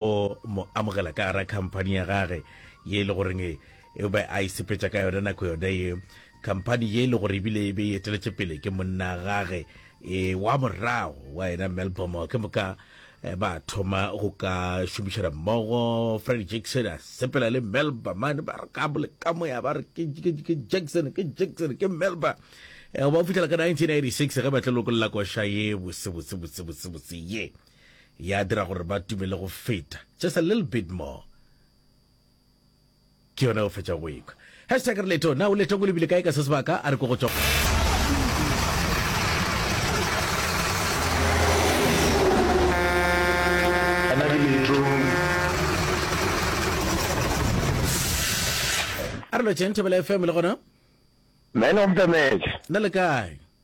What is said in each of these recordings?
o mo amogela ka gara khamphani ya gage ye e le goreng e be a isepetša e ka yona nako yone ye khamphani ye e le gore ebile e be e eteletše pele ke monna gage e wa morago wa yena melbom ke moka eh, ba thoma go ka šomišana mmogo freddy jackson a sepela le melba mane ba re ka bole ka moya ba re ke jackson ke jackson ke melba eh, ba o fitlhela ka 1986 ge ba tla lokolola koša ye bosebusebusebusebusi ye Ya dira gore ba tume le go feta. Just a little bit more. Ke yona o fetša go ekwa. Hashtag re leto. Na o letong o lebile kae ka se sebaka? A re ko go tšwa. Arlo Chen Thobela FM le gona. Man of the match. Na le kae?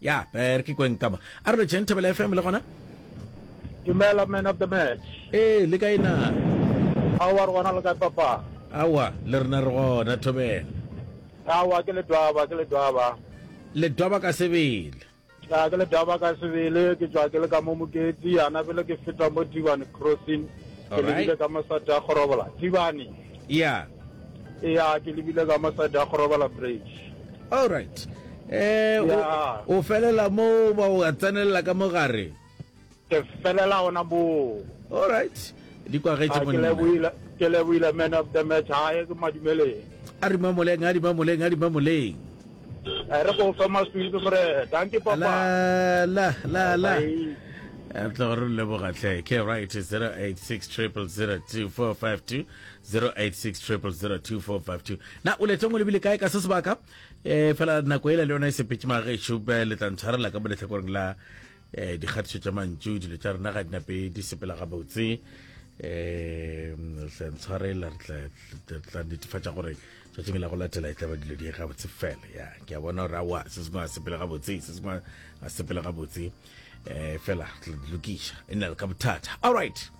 Ya, eh, re ke kweng ka mo. A re betšeng Thebela FM le gona? Dumela man of the match. Ee, le kae na? Aowa re gona le kae papa? Aowa, le rena re gona Thobela. Aowa ke Ledwaba, ke Ledwaba. Ledwaba ka sebele. Ya ke Ledwaba ka sebele, ke tswa ke le ka mo Moketsi, yana pele ke feta mo Tibane crossing. Ke lebile ka mosata gorobola. Tibane. Eya. Eya, ke lebile ka mo side ya go robala bridge. All right. Eh, o, Ya. o felela mo ba o a tsenelela ka mo gare. Ke felela gona moo. All right. Di kwagetše Ah, ke monna. lebohile ke lebohile man of the match hae ke madumeleng A di mamoleng, a di mamoleng, a di mamoleng. Eh, re go fa maswidi gore danke papa la la la la re tla gore leboga tle ke right 086 002452 086 002452 na o letsong o lebile kae ka se sebaka um fela nako ele le yone e sepetse magešo le tla ntshwarela ka mo letlhakoreng la um dikgatiso tša mantšu dilo tša rena ga dinape di sepela gabotse um re tla ntshwarela re tla netefatša gore tšatšing la go latela e tla ba dilo di gabotse fela ya ke a bona gore awa se sengwe a sepele gabotse se sengwe a sepele gabotse um fela lokiša e nna le ka bothata all right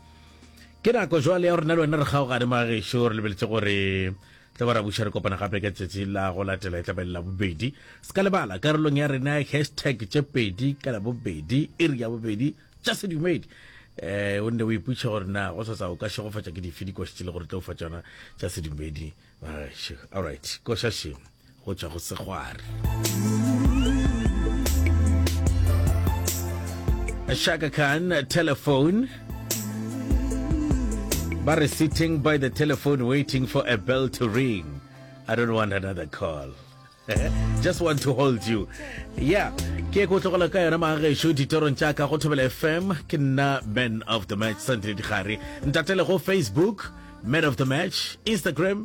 ke nako jwale ya rona le wena re kgaogane magešo re lebeletse gore tla ba ra buša re kopana gape ka tsatsi la go latela e tla belela bobedi se ka lebala karolong ya rena hashtag tše pedi ka la bobedi iri ya bobedi tša sedumedi um o nne o iputšha gore na go sasa o ka šegofatša ke dife dikoša tse le gore tlo fa tšona tša sedumedi allright koša še go tšwa go segware shaka khan telephone ba re sitting by the telephone waiting for a bell to ring i don't want another call just want to hold you yeah ke ko tlogela ka yona maagešo ditorong tša ka go thobela fm ke nna man of the match sunday digare ntatele go facebook man of the match instagram